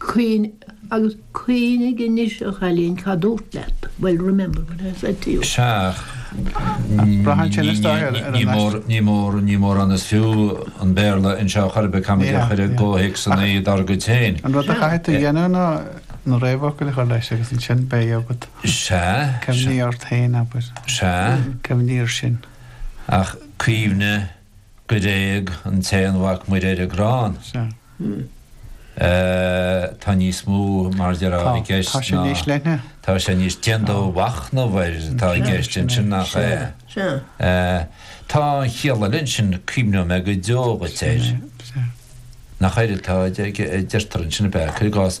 Cuimhnigh, agus cuimhnigh anois a chailín cad dúrt leat, bhuel remember what I said to you. Seadh. Braitheann sé anois dá réir ar an aiste. Ní mór, ní mórán is fiú an Béarla anseo chor ar bith, caithfidh muid é a chur i gcomhthéacsanna dár gcuid féin. An rud a chaithfidh tú a dhéanamh ná na réamhfhocail a chur leis agus ansin beidh agat. Sea. Cuimhnigh ort féin, abair. Sea. Cuimhnigh air sin. Ach cuimhnigh. Gur éag an tAonmhac Muire ar an gcrann. Sea. Tá níos mó mar a déarfá i gceist ná. Tá sé níos leithne. Tá sé níos déan do mhachnamh air atá i gceist ansin nach é? Sea. Tá an chiall eile ansin cuimhneoidh mé go deo dhuit air. Nach air atá deirtear ansin ab ea? Cuir i gcás.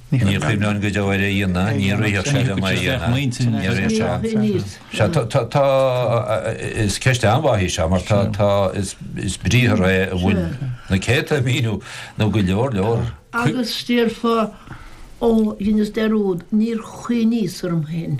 Ní chuimhneoinn go deo ar a dhéanamh, ní rithfeadh sé liom é a dhéanamh. Is ceist an-mhaith í seo mar tá, is briathar é a bhfuil na céadta míniú nó go leor leor. Agus déarfá, Ó, dheineas dearúd, níor chuimhníos orm féin.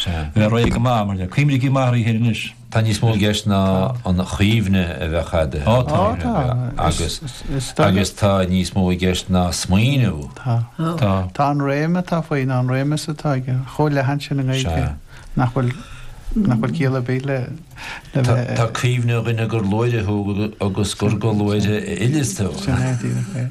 Bheith réidh go maith, mar le cuimrící maith righin anois. Tá níos mó i gceist ná an chuimhne a bheith agat agus tá níos mó i gceist ná smaoineamh. Tá. Tá an réim atá faoi nó an réimeas atá aige chomh leathan sin i nGaeilge nach bhfuil nach bhfuil ciall ar bith le Tá cuimhnigh a dhuine gur luaithreadh thú agus gur go luaithreadh a fhilleas tú. Sin é díreach é.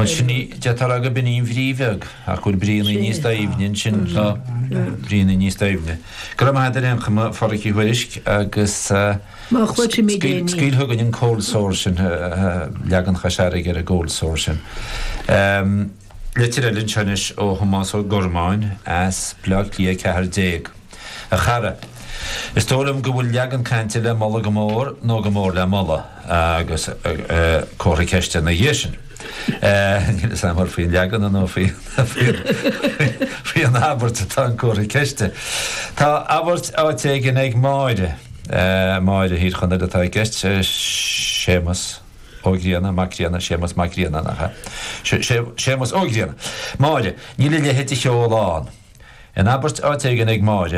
Ansin ní, deirtear gurb in í an bhrí bheag, ach go bhfuil bríonnaí níos doimhne ansin, tá bríonnaí níos doimhne. Go raibh maith agat ar aon chuma, a Pháraic Uí Thuairisc, agus scaoil chugainn an Cold Sore sin, leagan Chois Fharraige ar an gCold Sore sin. Litir eile anseo anois ó Thomás Ó Gormáin as Bleá Cliath 14. A chara, Is dóigh liom go bhfuil leagan cainte le moladh go mór nó go mór le moladh agus comhartha ceiste ina dhiaidh sin. Níl 'fhios a'm an faoin leagan nó faoin abairt atá an comhartha ceiste. Tá abairt áit éigin ag Máire, Máire Thír Chonaill atá i gceist, Séamas. Ó Grianna, Mac Grianna, Séamas Mac Grianna, nach ea? Sé, sé, Séamas Ó Grianna. Máire, Níl a leithéid de cheol ann. In abairt áit éigin ag Máire.